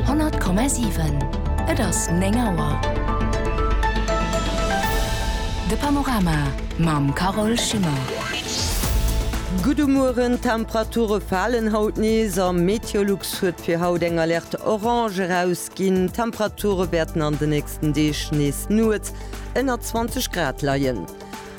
100,7. Et ass 9 Auer. De Panorama mam Carole Schimmer. Gudde Mueren, D'Temperature falen haut nees a Meteolux huet fir haut eng Alerte Orange erausginn. D'Temperature wäerten an de nächsten Deeg nees nuets ënner 20 Grad leien.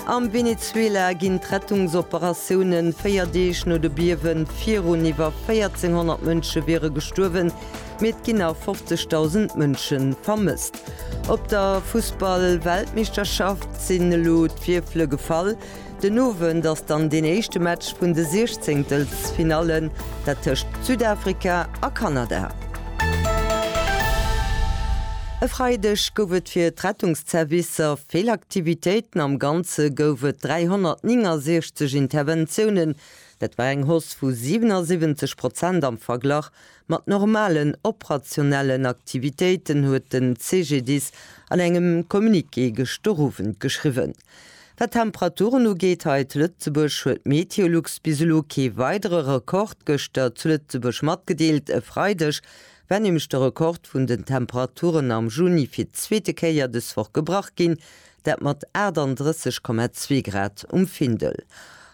Am Venezuela ginn d'Rettungsoperatioune véier Deeg no de Biewen virun. Iwwer 1400 Mënsche wiere gestuerwen, mee et ginn nach 50.000 Mënsche vermësst. Op der Fussball-Weltmeeschterschaft sinn elo d'Wierfele gefall. Den Owend ass dann deen éischte Match vun de Siechzéngtelsfinallen, dat tëscht Südafrika a Kanada. E Freideg gouf et fir d'Rettungsservicer vill. Aktivitéiten, am Ganze gouf et 369 Interventiounen, dat war eng Hausse vu 77 Prozent am Verglach mat normalen operationellen Aktivitéiten, huet den CGDIS an engem Communiqué gëscht de Owend geschriwwen. Wat d'Temperaturen ugeet hei zu Lëtzebuerg, huet d'Meteolux bis elo kee weidere Rekord gëschter zu Lëtzebuerg matgedeelt. E Freideg War nämlech de Rekord vun den Temperaturen am Juni fir d'zweete Kéier dës Woch gebrach ginn, dat mat 38,2 Grad um Findel.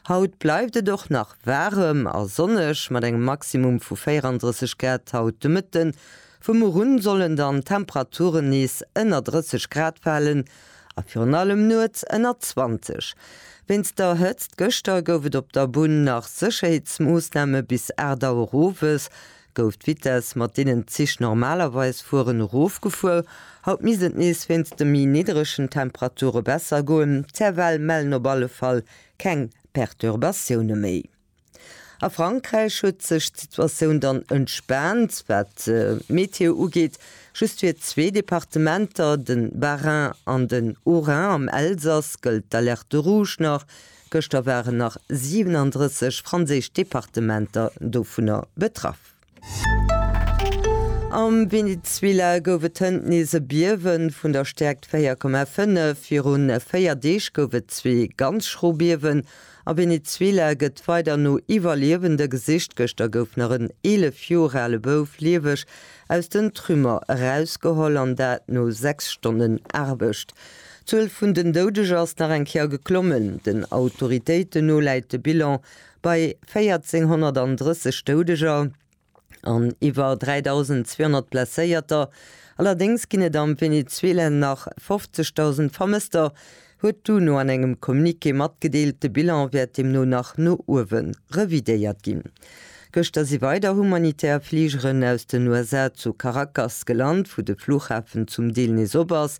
Haut bleift et och nach waarem a sonneg mat engem Maximum vu 34 Grad haut de Mëtten. Vu muer un sollen dann d'Temperaturen nees ënner 30 Grad falen a virun allem nuets ënner 20. Wéinst der Hëtzt gëschter gouf et op der Bunn nach Sécherheetsmoossname bis 8 Auer owes, Gouf d'Vitess, mat deenen d'Zich normalerweis fueren, erofgefuer? Haut misst et nees wéinst de méi nidderegen Temperature besser goen. D'Servell mellen op alle Fall keng Perturbatioune méi. A Frankräich huet sech d'Situatioun dann entspaant, wat d'Meteo ugeet. Just fir zwee Departementer, de Bas-Rhin an den Haut-Rhin, am Elsass gëllt d'Alerte rouge nach, Gëschter waren nach 37 franséisch Departementer dovunner betraff. Am Venezuela gouf et hënt nees e Biewe vun der Stäerkt 4,5. Viru véier Deeg gouf et zwee ganz schro Biewen. A Venezuela gëtt weider no Iwwerliewende gesicht. Gëschter gouf nach en 11 Joer ale Bouf lieweg aus den Trümmer erausgeholl, an dat no sechs Stonnen Aarbecht. D'Zuel vun den Doudeger ass nach eng Kéier geklommen. Den Autoritéiten no läit de Bilan bei 1.430 Doudeger an iwwer 3.200 Blesséierter. Allerdéngs ginn et am Venezuela nach 50.000 Vermësster, huet d'UNO an engem Communiqué matgedeelt. De Bilan wäert deemno nach no uewe revidéiert ginn. Gëschter si weider humanitär Fligeren aus den USA zu Caracas gelant, wou de Flughafen zum Deel nees op ass.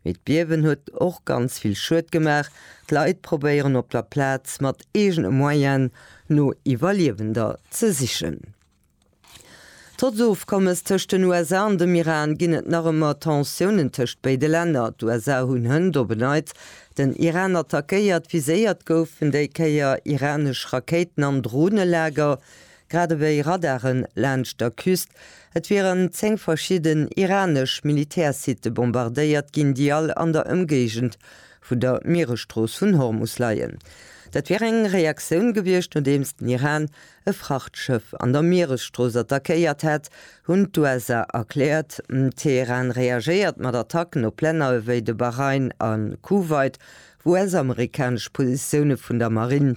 Mee d'Biewen huet och ganz vill Schued gemaach. D'Leit probéieren op der Plaz mat eegene Moyene no Iwwerliewender ze sichen. Trotz Ofkommes tëscht den USA an dem Iran ginn et nach ëmmer Tensiounen tëscht béide Länner. D'USA hunn hënt op e neits den Iran attackéiert. Viséiert goufen déi Kéier iranesch Rakéiten an Dronelager. grad ewéi Radaren laanscht der Küst. Et wieren 10 verschidden iranesch Militärsitte bombardéiert ginn, déi all an der Ëmgéigend vun der Mieresstrooss vun Hormus leien. Dat wier eng Reaktioun gewiescht, nodeems den Iran e Frachtschëff an der Mieresstrooss attackéiert hätt, hunn d'USA erkläert. Teheran reagéiert mat Attacken op Länner ewéi de Bahrain a Kuwait, wou US-amerikanesch Positioune vun der Marinn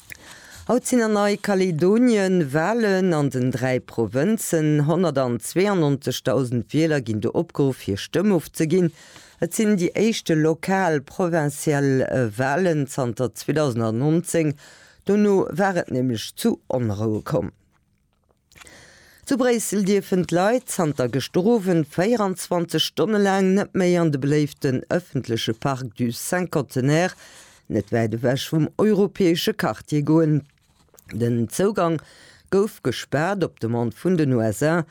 Haut sinn an Nei-Kaledonien Walen an den dräi Provënzen. 192.000 Wieler ginn do opgeruff hir Stëmm ofzeginn. Et sinn déi éischte lokal, provincial, Walen zanter 2019. Dono war et nämlech zu Onroue komm. Zu Bréissel dierfen d'Leit zanter gëschter Owend 24 Stonne laang net méi an de beléiften ëffentleche Parc du Cinquantenaire, net wäit ewech vum europäesche Quartier, goen. Den Zougang gouf gespaart op Demande vun den USA.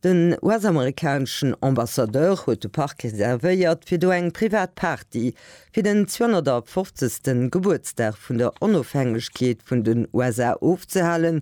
Den US-amerikaneschen Ambassadeur huet de Park reservéiert fir do eng privat Party fir den 250. Gebuertsdag vun der Onofhängegkeet vun den USA ofzehalen,